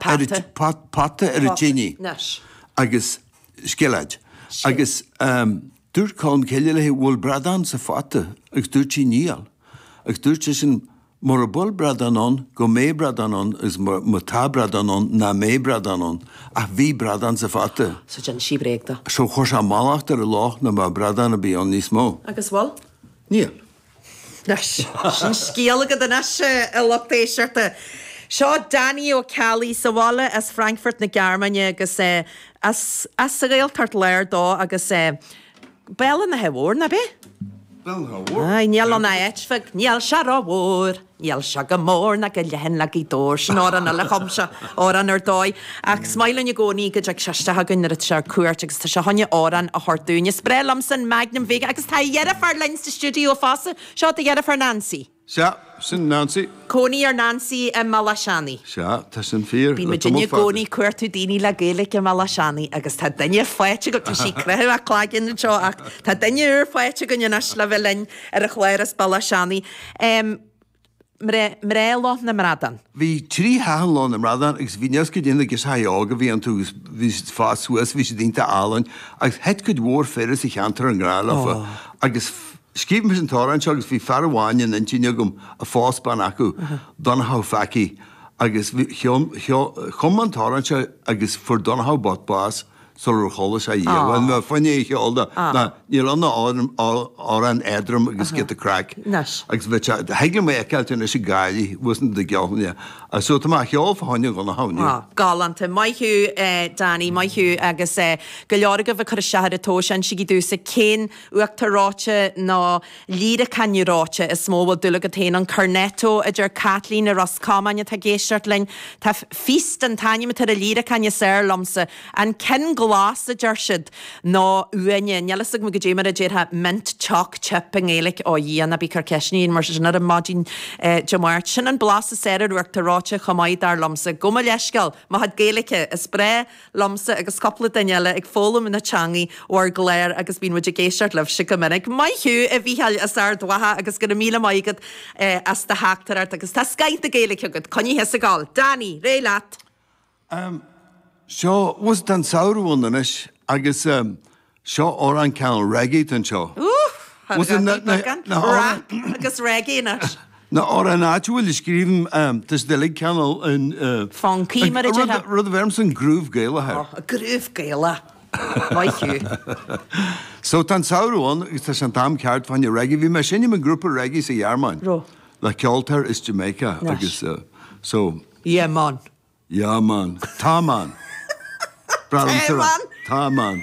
Pota. Pota ar an tinidh agus scilléad agus dúirt Colmcille léi an bhfuil bradán sa phota agus dúirt sí níl agus dúirt seisean mura bhfuil bradán ann go mbeidh bradán ann agus má tá bradán ann nach mbeidh bradán ann ach bhí bradán sa phota. So d'inis sí bréag dó. So chuir sé mallacht ar an loch nach mbeadh bradán ar bith ann níos mó. Agus bhfuil? Níl. Sin scéal agat anois, a lucht éisteachta. Seo Danny Ó Ceallaigh, sa bhaile as Frankfurt na Gearmáine agus is as an Ghaeltacht Láir dó agus Béal an Átha Mhóir, nab é? Béal an Átha Mhóir. Aye, níl ann ach áit bheag, níl sé rómhór. Níl sé chomh mór ná chomh leathan le Gaoth Dobhair, sin amhrán eile a chum sé, amhrán ar dóigh. Ach is maith linn i gcónaí go dtig sé isteach againn nuair atá sé ar cuairt agus tá sé chun a amhrán a thabhairt dúinn. Is breá liomsa an Magnum beag agus tá a dheirfiúr linn sa stiúideo fosta. Seo do dheirfiúr Nancy. Sea, sin Nancy. Cónaí ar Nancy i mBaile Átha Seanaidh. Sea, tá sin fíor, le tamall fada. Bímid i gcónaí cuartú daoine le Gaeilge i mBaile Átha Seanaidh agus tá duine faighte againn, tá sí ag croitheadh a cloiginn anseo, ach tá duine úr faighte againn anois le bheith linn ar an chlár as Baile Átha Seanaidh. Mná Loch na mBradán. Bhí trí sheathán Loch na mBradán agus bhí nios go déanaí girseachaí óga a bhí iontu agus bhí siad ag fás suas, bhí siad iontach álainn agus thit cuid mhór fir as an cheantar i ngrá leofa agus scríobh mise an t-amhrán seo agus bhí fear amháin in intinn agam a phós bean acu, Donnchadh Phacaí, agus chum mé an t-amhrán seo agus fuair Donnchadh bocht bás Sular chuala sé an t-amhrán, ní bhfuair mé a cheol dó. Ná, níl ann ach amhrán éadrom agus giota craic. Anois. Agus bheadh sé, thig liom é a fheiceáilt anois ag gáirí, uasal do gheall é. Agus so tá mé á cheol fá choinne Dhonnchaidh inniu. Galánta. Maith thú, Danny, maith thú, agus go leor agaibh ag cur isteach ar an tseó. Insígí domhsa cén uachtar reoite nó. Líreacán reoite is mó a bhfuil dúil agat féin ann, cornetto, a deir Caitlín i Ros Comáin atá ag éisteacht linn. Tá Feast, an t-ainm atá ar an líreacán is fearr liomsa. An ceann glas, a deir siad. Nó uaine. Níl a fhios agam cad é mar a déarfá mint, choc, chip i nGaeilic. Ó a Dhia, ná bí ag cur ceisteanna mar sin orm maidin Dé Máirt. Sin an blas is fearr ar uachtar reoite chomh maith, dar liomsa. Gabh mo leithscéal, mo chuid Gaeilice, is breá. liomsa agus cúpla duine eile ag foghlaim na teangaidh ó bhur gclár agus bíonn muid ag éisteacht libhse go minic. Maith thú, a Mhícheáil, as Ard Mhacha agus go raibh míle maith agat as do theachtaireacht agus tá scoith Gaeilge agat, coinnigh thusa ag gabháil! Danny, ar aghaidh leat! So tá an samhradh ann anois agus Seo amhrán cineál reggae den tsórt. Ooh! How did I beat that gun? Rap agus reggae in it. Na hamhráin áite bhfuil i scríbhinn Ms Doiligh cineál funky, mar a déarfá. Rud a bheirimse an groove Gaelach air. Oh, groove Gaelach. Maith thú. So tá an samhradh ann agus tá sé an t-am ceart fá choinne reggae. Bhí mé ag seinm i ngrúpa reggae sa Ghearmáin. Ró. Le ceoltóir as Jamaica agus so. Yeah man. Yeah man. Tá man. Brat an Tire. Tá man.